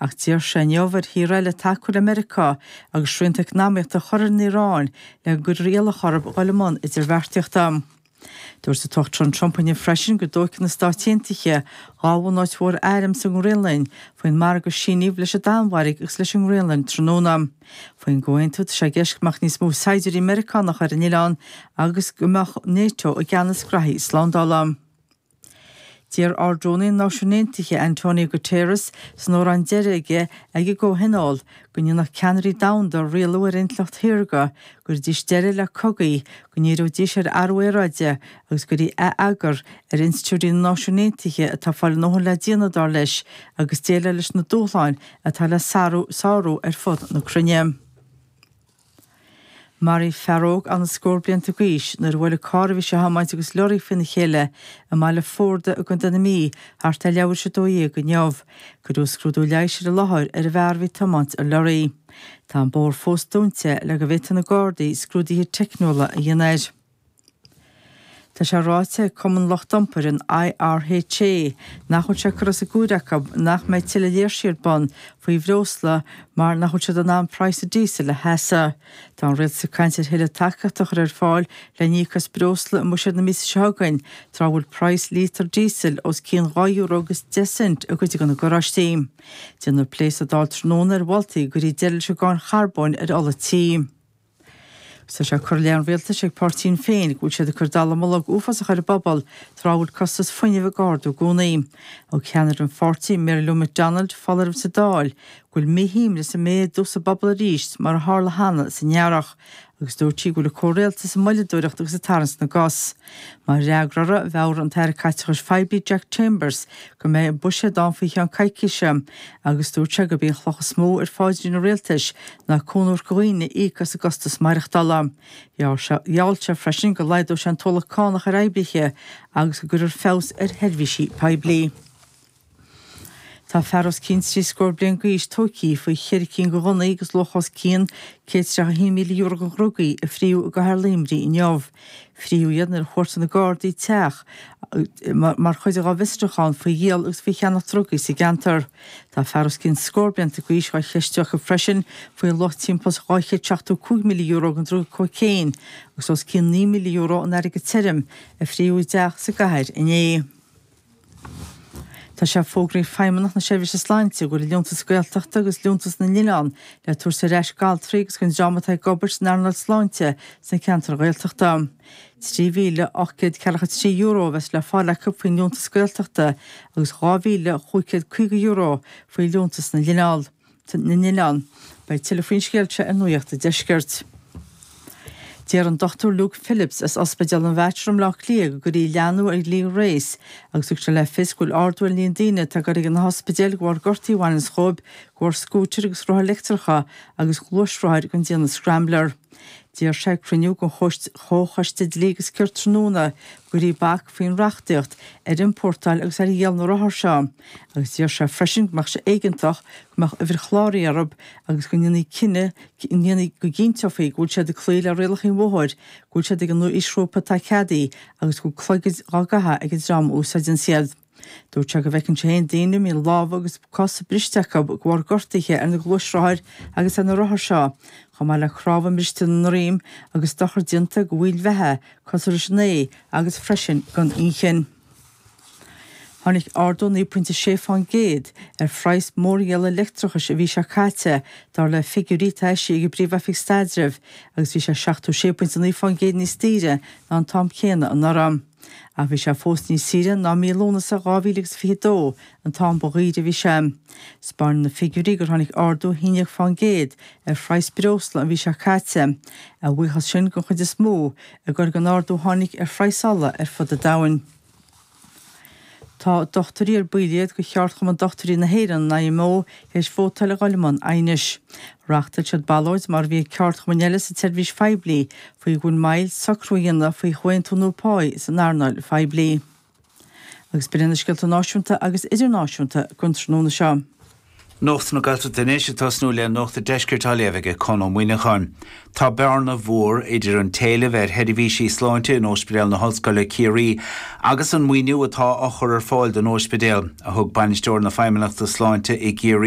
Ach d'iarr sé inniu ar thíortha eile tacú le Meiriceá agus srianta eacnamaíochta a chur ar an Iaráin le go gcuirfear iallach orthu dul i mbun idirbheartaíochta. Dúirt an tUachtarán Trump inniu freisin go dtógfaidh na Stáit Aontaithe dhá bhunáit mhór airm sa nGraonlainn faoin margadh a síníodh leis an Danmhairg agus leis an nGraonlainn tráthnóna. Faoin gcomhaontú tá sé i gceist go mbeadh níos mó saighdiúirí Meiriceánacha ar an oileán agus go mbeadh Nato i gceannas gnaithí slándála. D'iarr Ard-Rúnaí na Náisiún Aontaithe, António Guterres, san óráid deiridh aige ag an gcomhthionól, go ndéanfadh ceannairí domhanda rialú ar intleacht shaorga, go gcuirfidís deireadh le cogaí, go ndíreoidís ar athrú aeráide agus go gcuirfí atheagar ar institiúidí na Náisiún Aontaithe atá ag fáil a ndóthain le déanamh, dar leis, ag déileáil leis na dúshláin atá le sárú ar fud na cruinne. Maraíodh fear óg sna scór blianta d'aois nuair a bhuail an carr a bhí sé a thiomáint agus lorry faoina chéile i mBaile Forda i gContae na Mí thart ar leathuair is a dó dhéag inniu. Cuireadh scrúdú leighis ar an láthair ar an bhfear a bhí ag tiomáint an lorry. Tá an bóthar fós dúnta le go bhféadfadh na Gardaí scrúduithe teicniúla a dhéanamh air. Tá sé ráite ag Cumann Lucht Iompair an IRHA nach bhfuil sé curtha as an gcúis acu nach mbeidh tuilleadh léirsí ar bun faoi bhreosla mar nach bhfuil siad in ann praghas an díosail a sheasamh. Tá an Rialtas ag caint ar thuilleadh tacaíochta a chur ar fáil le híoc as breosla i mbuiséad na míosa seo chugainn, tráth a bhfuil praghas lítear díosail os cionn dhá euro agus deich cent i gcuid de na garáistí. Déanfar plé sa Dáil tráthnóna ar mholtaí go gcuirfí deireadh leis an gcáin charbóin ar ola tí. Tá sé curtha i leith an rialtais ag Páirtí Shinn Féin go bhfuil siad ag cur dallamullóg an uafáis ar an bpobal tráth a bhfuil costas fuinnimh ag ardú i gcónaí. Thug ceannaire an pháirtí, Mary Lou McDonald, foláireamh sa Dáil go bhfuil míshuaimhneas ag méadú sa bpobal arís mar a tharla cheana san earrach agus dúirt sí go bhfuil an comhrialtas ag moilleadóireacht agus ag tarraingt na gcos. Mar fhreagra air, mheabhraigh an tAire Caiteachais Phoiblí Jack Chambers go mbeidh buiséad ann faoi cheann coicíse agus dúirt sé gurb í an chloch is mó ar pháidrín an Rialtais ná cúnamh do dhaoine íoc as an gcostas maireachtála. Gheall sé freisin go laghdódh sé an t-ualach cánach ar oibrithe agus go gcuirfear feabhas ar sheirbhísí poiblí. Tá fear os cionn trí scór bliain d'aois tógtha faoi cheithre cinn de ghunnaí agus luach os cionn €131,000 de dhrugaí a fríodh i gcathair Luimnigh inniu. Fríodh iad nuair a chuartaigh na Gardaí teach mar chuid dá bhfiosrúchán faoi dhíol agus faoi cheannach drugaí sa gceantar. Tá fear os cionn scór blianta d'aois á cheistiú acu freisin faoi luach timpeall €275,000 den druga cóicéin agus os cionn €9,000 in airgead tirim a fríodh i dteach sa gcathair inné. Tá sé fógraithe ag Feidhmeannacht na Seirbhíse Sláinte go bhfuil Liúntas Gaeltachta agus Liúntas na nOileán le tabhairt ar ais d'altraí agus don dream atá ag obair san earnáil sláinte sna ceantair Ghaeltachta. €3,843 a bheas le fáil acu faoin Liúntas Gaeltachta agus €2,550 faoi Liúntas na nOileán. na nOileán. Beidh tuilleadh faoin scéal seo ar Nuaíocht an Deiscirt. D'iarr an Dr Luke Phillips as Ospidéal an Mhater i mBleá Cliath go gcuirfí leathnú ar dhlí Grace agus thug sé le fios go bhfuil ardú ar an líon daoine atá ag goil ag na hospidéil de bharr gortaí a bhaineanns dhóibh de bharr scútair agus rothair leictreacha agus gluaisrothair den déanamh scrambler. D'iarr sé ag cruinniú den Chomhchoiste Dlí agus Cirt tráthnóna go gcuirfí bac faoin reachtaíocht ar iompórtáil agus ar dhíol na rothar seo agus d'iarr sé freisin go mbeadh sé éigeantach go mbeadh uimhir chláraithe orthu agus go ndéanfaí go gcinnteofaí go bhfuil siad ag cloí le rialacha an bhóthair, go bhfuil siad ag an aoisghrúpa atá ceadaithe agus go bhfuil clogaid á gcaitheamh ag an dream a úsáideann iad. Dúirt sé go bhfeiceann sé féin daoine a mbíonn lámha agus cosa briste acu de bharr gortuithe ar na gluaisrothair agus ar na rothair seo, chomh maith le cnámha briste ina ndroim agus dochar déanta do bhaill bheatha, cosúil leis an ae agus freisin don inchinn. Tháinig ardú 9.6 faoin gcéad ar phraghas mórdhíola leictreachais an mhí seo caite, dar le figiúirí atá eisithe ag an bPríomh-Oifig Staidrimh, agus bhí sé 76.9 faoin gcéad níos daoire ná an t-am céanna anuraidh. Ach bhí sé fós níos saoire ná mí Lúnasa 2022 an t-am ba dhaoire a bhí sé. Spáineann na figiúirí gur tháinig ardú shíneadh faoin gcéad ar phraghas breosla an mhí seo caite, a bhuíochas sin den chuid is mó i gcur don ardú a tháinig ar phraghas ola ar fud an domhain. Tá dochtúirí ar baill iad de Cheardchumann Dochtúirí na hÉireann, an IMO, tar éis vótáil a dhul i mbun aighnis. Reáchtáil siad ballóid, mar a bhí ag ceardchumainn eile sa tseirbhís phoiblí, faoi, faoin moill socrú a dhéanamh faoi chomhaontú nua páí san earnáil phoiblí. Agus b'in iad na scéalta náisiúnta agus idirnáisiúnta don tráthnóna seo. Nuacht na Gaeltachta anois ag tosnú le Nuacht a' Deiscirt á léamh aige Conn Ó Muíneacháin. Tá bearna mhór idir an t-éileamh ar sheirbhísí sláinte in Óispidéal na hOllscoile Ciarraí agus an maoiniú atá á chur ar fáil don óispidéal, a thug Bainisteoir na Feidhmeannachta Sláinte i gCiarraí,